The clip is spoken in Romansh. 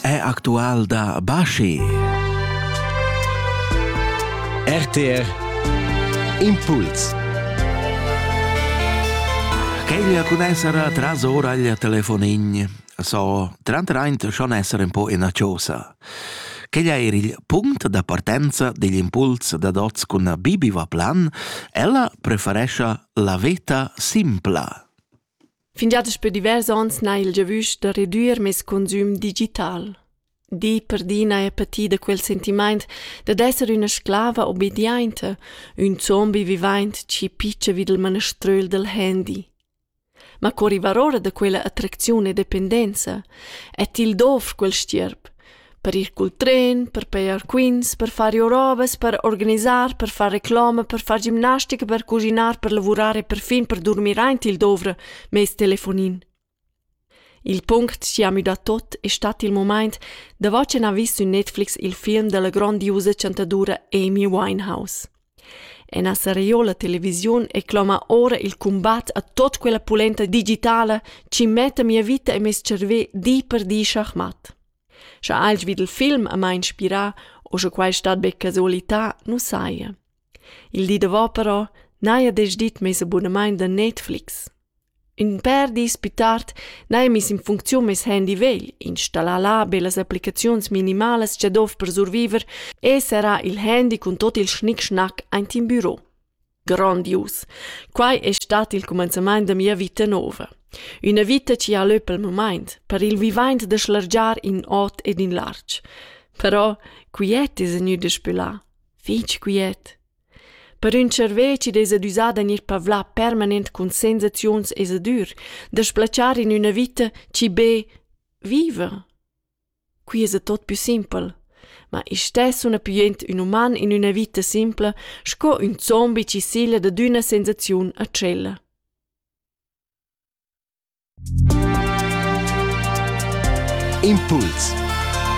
è actual da Baschi. RTR Impuls Queglia cun essere tras ora il telefonin so trantraint schon essere un po ina chosa. Queglia era il punct da partenza degli impuls da dots con Bibi va plan, ella preferescia la veta simpla. Fingià daspö divers ons n'ha il giavüsch da redüer meis consüm digital. Di per di n'haja pati da quel sentimaint dad esser üna sclava obediainta, ün zombi vivaint chi pitscha vi dal manaströl dal handy. Ma co rivar ora da quella attracziun e dependenza? E til dovr quel stierp? per ir cul tren, per pejar quints, per far rovas, per organisar, per far reclama, per far gimnastica, per cuschinar, per lavurar e perfin per durmir aint il dovra mez telefonin. Il punct chi ha müdà tot es stat il momaint davo ch'ün ha vis sün Netflix il film della grondiusa chantadura Amy Winehouse. Ena seriola televisiun ei cloma ora il cumbat a tot quella pulenta digitala chi metta mia vita e mes cervè di per di schachmatt. Scha alch vid il film a mai inspirà o sche quai stat be casualità, nu saja. Il di davò però n'haja desdit meis abunamaint da Netflix. Ün pèr dis pü tard n'haja miss in funcziun meis handy vegl, installar là be las applicaziuns minimalas cha dovr per surviver e serrar il handy cun tuot il schnick-schnack aint in büro. Grandius! Quai es stat il cumanzamaint da mia vita nouva. Üna vita chi ha lö pel mumaint, per il vivaint da schlargiar in ot ed in larg. Però quiet es gnü daspö là, fich quiet. Per ün servezi d'esa düsà da gnir pavlà permanent cun sensaziuns esa dür da sblatschar in üna vita chi be viva. Quai esa tot pü simpel. Ma i's stess suna pü jent ün uman in üna vita simpla sco ün zombi chi sigla dad üna sensaziun a tschella. Impuls